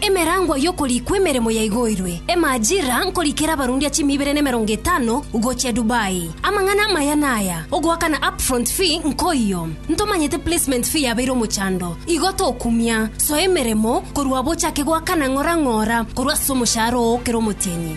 Emerangwa y'okorikwa emeremo yaigoirwe. Emajira nkorikera abarundia chimi ibere na emerongo etano gochia Dubai. Amang'ana amaya naya, ogoakana upfront fee nkoiyo. Ntomanyete placement fee yabeire omochando, igo tokumia. Soa emeremo korwa abo ochake goakana ng'ora ng'ora korwa ase omoshahara oo kera omotienyi.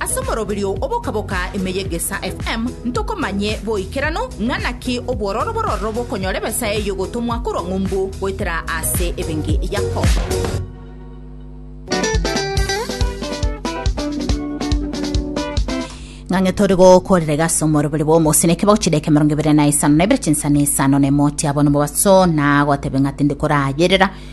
Ase omoroberio oboka-boka ime y'Egesaa FM ntokomanye boikeranu ng'a naki obwororo bororo bokonyora ebesa eye y'ogotomwa korwa ng'umbu goetera ase ebenge yako. ng'ang'e tori gokorera gase omorobiri bwa omosine kibago chideke mirongo ibere na isano na ibere chinsana isano na emoti abo nibo baso nagotebe ng'ati ndikorayerera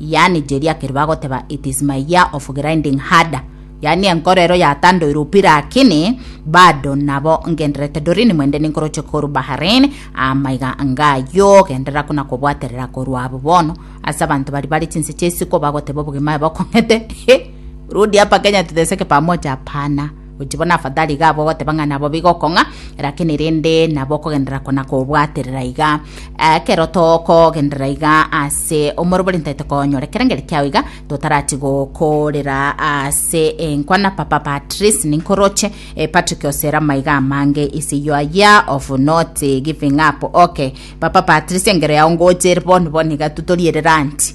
yaani Jeri akeri bagoteba it is my year of grinding harder yaani enkoro ero yatandoire upi lakini bado nabo ngenderete dorini mwende ninkoroche koru Bahrain amaiga ngayo genderera kuna kobwaterera koru abo bono ase abanto bari bare chinse chia isiko bagoteba obogima ebe okong'ete rudi hapa Kenya tuteseke pamoja hapana Gochia bono afadhali iga abwo ogoteba ng'a nabo bigokong'a, rakini rende nabo okogenderera kona kobwaterera iga. Ekero tokogenderera iga ase omorobori ntaete konyora ekerengeri kiao iga totarati gokorera ase enkwana papa Patrice ninkoroche eh, Patrick osera amaiga amange is your year of not giving up okay papa Patrice engero yao ngocheri bono bono iga tu torierera anti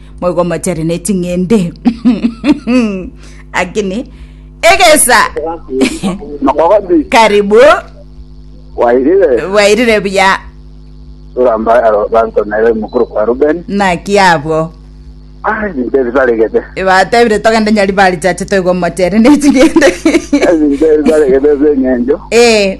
moigo mochare ne ching'ende akini egesa Makogoti. karibu Wairire. bwairire buya Turamba aro banto naye mukuru kwa Ruben. naki abwo Ah, ebinto bisaregete. batebire togende nyari bari chache toigo mochare ne ching'ende Ebinto bisaregete ase eng'encho. eh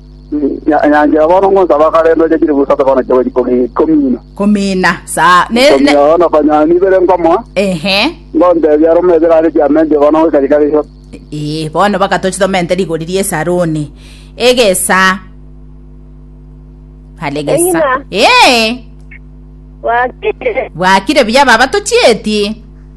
Nyanchera bono ngonsaba akare noche chilifu isato bono chiawe chikomi- komina. Komina. Saa. Ne, ne. Komina bono okonyora nibere nkomoa, Ehe. ngontebia are omoe ebere are chiamentwe bono goika chikare isato. Ee, bono bagatoche tomente rigori ri'esaruni. Egesa. Hale egesa. Eng'ina. Ee, Wakire. bwakire buya baba tochieti.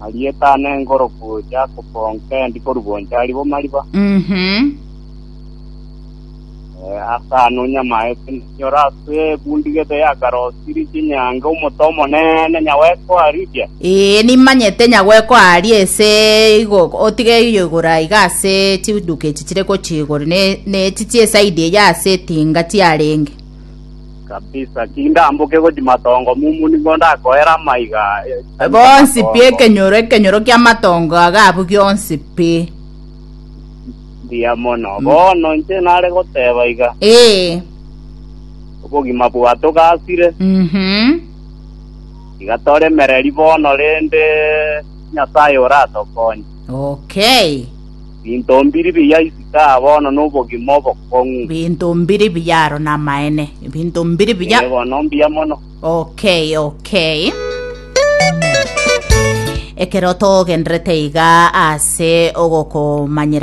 Arieta ane engoroku ya koponka endi korwa inche ari bo mariba. Mhm. Eh, ase ano nyamae nyora ase bundigete ya karosiri chinyange omoto omonene nyaweko aribia. Ee, nimanyete nyagweko aria ese igo otige iyo igoro aiga ase chiduka echi chire gochia igoro ne ne echi chiesaidi eya ase etinga chiarenge. kabisa, tindamboke gochia matongo momu nigo ndakoera amaiga aya. Bonsi pi ekenyoro ekenyoro ki'amatongo aga abwo gionsi pi. Mbuya mono. Bono inche nare goteba iga, Ee. obogima bwa togasire, Mhm. iga toremereri bono, rende Nyasaye oratokonye. Okay. Binto mbiri biya isiko aa bono nobogima obokong'u. Binto mbiri biya aro namaene. Binto mbiri biya. Ee bono mbiya mono. Okay, okay. Ekero togenderete iga ase ogokomanyera